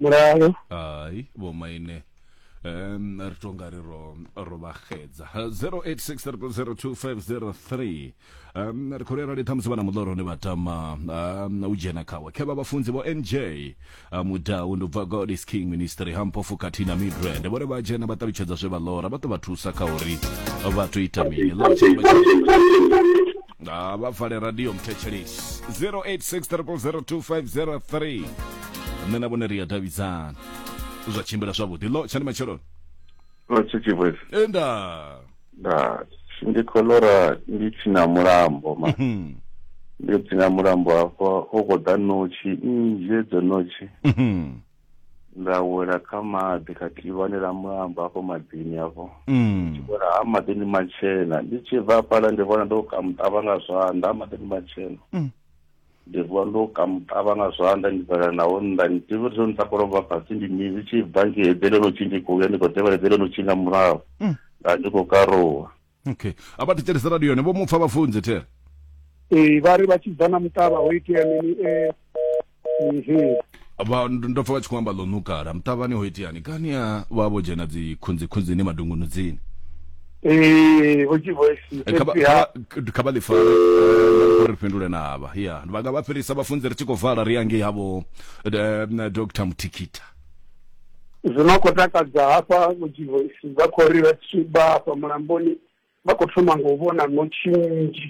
mulalo hai vho maine um ri to nga ri ro ro vha xedza 0863002503 um ri khou ri arali ṱhamusi vhana muḽoro ni vha tama um u dzhena khawe khe vha vhafunzi vho nj a mudau ndi bva god is king ministry ha mpofu khathihi na midrand vhone vha dzhena vha ṱalutshedza zwe vha ḽora vha ḓo vha thusa kha uri vha to ita mini ḽora tshifhinga tsha ha vha vale radio mthetshelesi 0863002503 nṋe na vhone ri a davhidzana zwa tshimbila zwavhuḓi lo tshani matsheloni lotshichivwezi enda nda ndi khou lora ndi tsina mulambo ma Mhm, ndi tsina mulambo hafha hu khou ḓa notshi nnzhi edzo notshi mhm. nda wela kha maḓi kha tivhani ḽa mulamba afho maḓini afho mm. wela ha maḓini matshena ndi tshi bva fhala ndi vhona ndo kamuṱavha nga zwanḓa ha maḓini matshena mm. ndi vuwa ndo kamuṱavha nga zwanḓa ndi bvela naho nnḓa ndi ḓivhi uri zwo ni takolo bva fhasi ndi mini zwi tshi bva nge eḓelelo tshi ndi khou ya ndi khou ḓevhela eḓelelo tshi nga murahu mm. nda ndi khou karuwa okay a vha thetshelesa radio yone vho mu pfa vhafunzi the ee vha ri vha tshi bva na muṱavha ho itea mini ee mhm. vha ndo pfa vha tshi khou amba ḽo nukala muṱavhani ho iteani kani a vha vho dzhena dzi khunzi khunzini madungunudzini ee vho dzhivo eh, kha vha ḽifare eh, ri fhindule na avha ya vha nga vha fhelisa vhafunzi ri tshi khou vala ri ya ngei havho eh, dr mutikita zwi no khou takadza hafha vhudzivhoisi vha khou ri vha tshi vha hafha mulamboni vha khou thoma nga u vhona ṋotshi nnzhi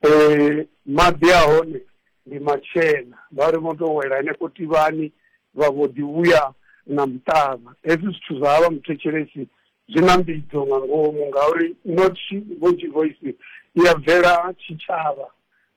um maḓi a hone ndi matshena vha ri vho tou wela henefho tivhani vha vho ḓi vhuya na muṱavha hezwi zwithu zwa vha muthetshelesi Zwi na mbidzo nga ngomu ngauri notshi Vhotshi Voice i ya bvela tshitshavha,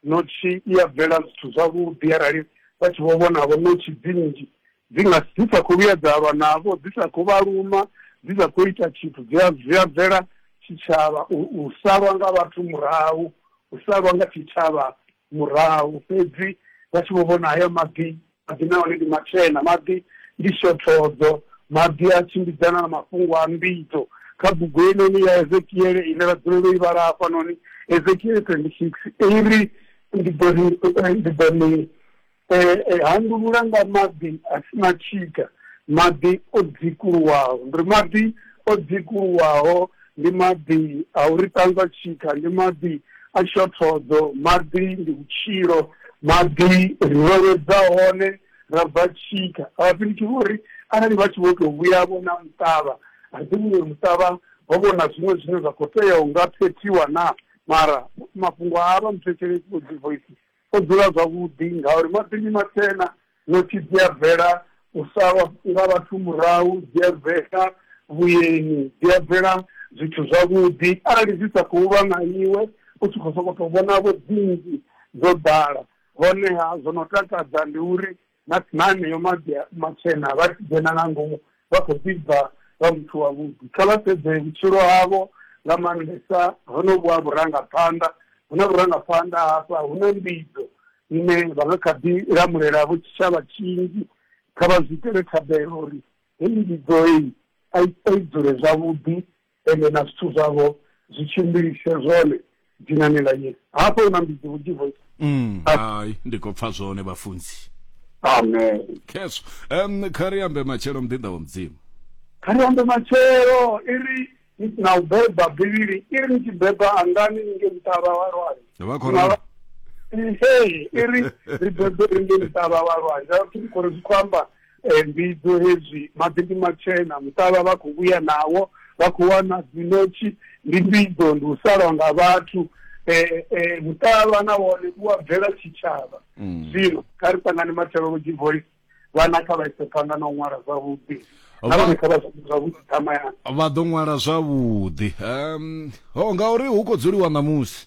notshi i ya bvela zwithu zwavhuḓi arali vha tshi vho vhonavho notshi dzi nnzhi dzi nga dzi sa khou vhuya dza lwa navho, dzi sa khou vha luma, dzi sa khou ita tshithu, dzi a zwi a bvela tshitshavha. U u salwa nga vhathu murahu, u salwa nga tshitshavha murahu fhedzi vha tshi vho vhona haya maḓi, maḓi nahone ndi matshena, maḓi ndi shothodzo, maḓi a tshimbidzana na mafhungo a mbidzo. Kha bugu heinoni ya Ezekiele ine ra dzulela u i vhala hafhanoni, Ezekiele 26, i ri, Ndi ḓo ni, ndi ḓo ni. Eh, eh, handulula nga maḓi a si na tshika maḓi o dzikuluwaho ndi ri maḓi o dzikuluwaho ndi maḓi a uri ṱanzwa tshika ndi maḓi a shothodzo maḓi ndi vhutshilo maḓi ri vhevhedza hone ra bva tshika avhafhiliki vho ri arali vha tshi vho tou vhuya vho na muṱavha a ḓi vhuye muṱavha ho vhona zwiṅwe zwine zwa khou tea u nga phethiwa na mara mafhungo a vha muthetshelesi vho dzivoisi O dzula zwavhuḓi, ngauri maṱoni matshena, ṋotshi dzi a bvela u salwa nga vhathu murahu, dzi a bvela vhueni, dzi a bvela zwithu zwavhuḓi. Arali dzi sa khou lwa na iwe, u tshi khou sokou tou vhona-vho dzi nnzhi dzo ḓala, honeha zwo no takadza ndi uri na na haneyo maḓi a- matshena vha tshi dzhena nga ngomu vha khou ḓi bva vha muthu wavhuḓi kha vha sedze vhutshilo havho nga maanḓesa honovhu ha vhurangaphanḓa hu na vhurangaphanḓa hafha hu na mbidzo ine vha nga kha ḓi lamulela vho tshitshavha tshinzhi kha vha zwi itele thabelo uri heyi mbidzo heyi a i a i dzule zwavhuḓi ende na zwithu zwavho zwi tshimbilise zwone dzinani ḽa Yesu. Hafha hu na mbidzi vhunzhi voice. Mm, hai ndi khou pfa zwone vhafunzi. Amen. Khezwo. Um, kha ri ambe matshelo muḓinḓa wa mudzimu. Kha ri ambe matshelo i ri na u beba bivhili i ri ni tshi beba angani ni nge muṱavha wa lwanzhe. Vha khou ralo. Ee, i ri ri bebe ri nge muṱavha wa lwanzhe. Vhathu ri khou ri zwi khou amba eh, mbidzo hezwi maḓi ndi matshena muṱavha vha khou vhuya nawo vha khou wana dzinotshi ndi mbidzo ndi u salwa nga vhathu um eh, eh, muṱavha na wone u a bvela tshitshavha mm. zwino kha ri ṱangane mathelology voice vhana kha vha ise phanḓa na u ṅwala zwavhuḓi vha ḓo ṅwala zwavhuḓi um ho ngauri hu khou dzuliwa ṋamusi